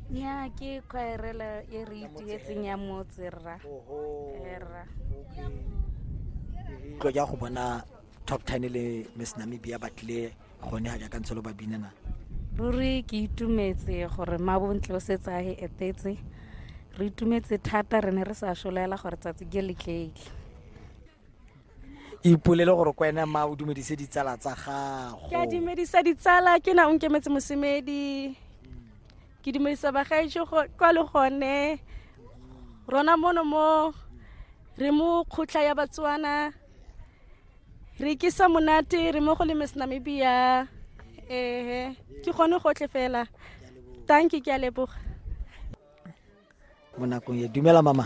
nya ke khwaerela e re itietseng ya motse rra rra tlo ja go bona top 10 le miss namibia ba tlile gone ga jaaka ntse lo ba binana ruri ke itumetse gore mabontle o setse a e etetse re itumetse thata re ne re sa solela gore tsatsi ke le tleile ipolele gore ko ene ma o dumedise ditsala tsa gago ke a dumedisa ditsala ke na o nkemetse mosemedi ke dumedisa bagaetso kwa le gone rona mono mo re mo kgotla ya batswana re kisa monate re mo go le miss namibia ehe ke gone gotlhe fela tanki ke a leboga mo nakong e dumela mama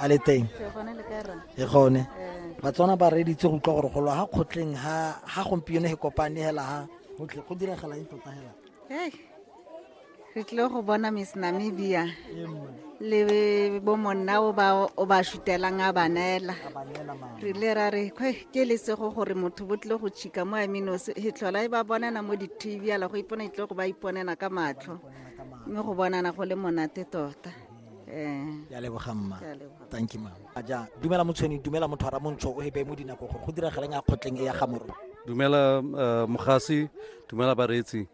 a le teng e gone batswana ba reditse go utlwa gore go lwa ga kgotleng ga gompieno e kopane hela ga gotlhe go diragala eng tota hela re tlile go bona miss namibia le bo monna o ba o ba shutelang a banela re le ra re ke le sego gore motho bo tlile go chika mo aminosi e tlhola e ba bonana mo di-tv ala go ipona e tlile go ba iponela ka matlho mme go bonana go le monate tota um ya leboga mma thank you mama a ja dumela motshweni dumela motho a ramontsho o ebe mo dinako gore go diragaleng a kgotleng e ya gamoro dumela uh, mogasi dumela bareetsi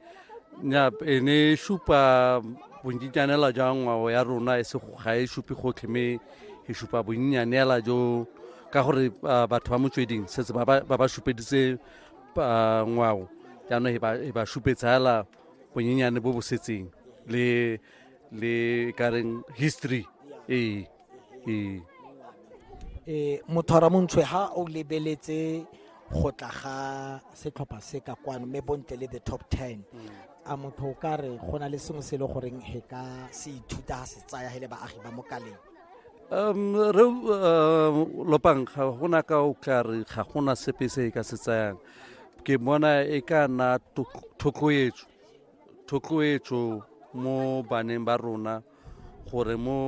nya e ne e supa bonnyitsanela jwa ngwao ya rona e se ga e supe gotlhe mme e supa bonnyanela jo ka gore uh, batho ba motsweding setse ba ba supeditse uh, ngwao jaanong e ba supetsa fela bonyenyane bo bo setseng le le kareng history ee ee e mothora montshwe ha o lebeletse go tla ga setlhopha se ka kwano mme bontle le the top 10 a motho o ka re go na le sengwe se e le goreng he ka se ithuta ha se tsaya he le baagi ba mokaleng um re um lopang ga gona ka o tla re ga gona sepe se e ka se tsayang ke bona e ka nna thotloetso thotloetso mo baneng ba rona gore mo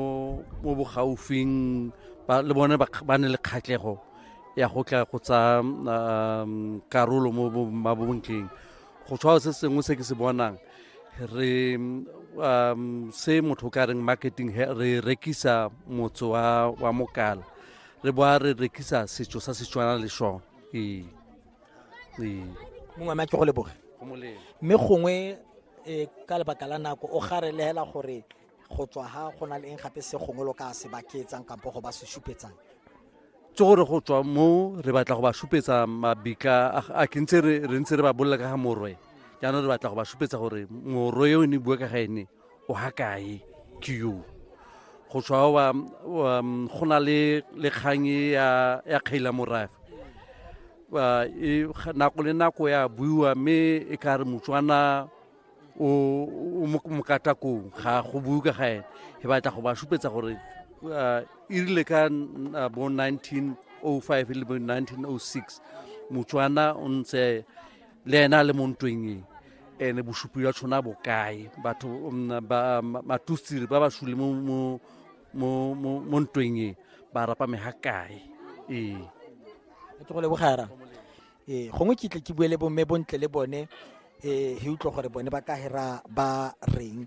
mo bogaufing le bone ba ne le kgatlhego ya go tla go tsa um, karolo mo mabontleng go tshwao se sengwe se ke se bonang re um, se motho ka reng marketing re rekisa motse wa mokala re boa re rekisa setso sa setswana le sone ee ee mongwe ame a ke go leboge go molemo mme gongwe eh, ka lebaka la nako o garelegela gore go tswa ha go na le eng gape se gongwe lo ka se baketsang kampo go ba se supetsang tse gore go tswa mo re batla go ba supetsa mabika a- a ke ntse re re ntse re ba bolela ka ga morwe jaanong re batla go ba supetsa gore morwe yo ne bua ka ga ene o ha kae ke yo go tswa wa um, go na le le kgang e ya ya kgaila morafe ba e nako le nako ya buiwa mme e ka re motswana o o mo- mokatakong ga go bue ka ga ene e batla go ba supetsa gore uh, e rile ka n- uh, bo 1905 le bo 1906 motswana o ntse le ena a le mo ntweng e ene bosupi jwa tshona bokae batho mm, ba- ma- matustiri ba ba sule mo- mo- mo mo- mo ntweng e ba rapa me ga kae ee e tlogo le bogara ee gongwe ke tle ke bue le bomme bontle le bone ee he utlwa gore bone ba ka hera ba reng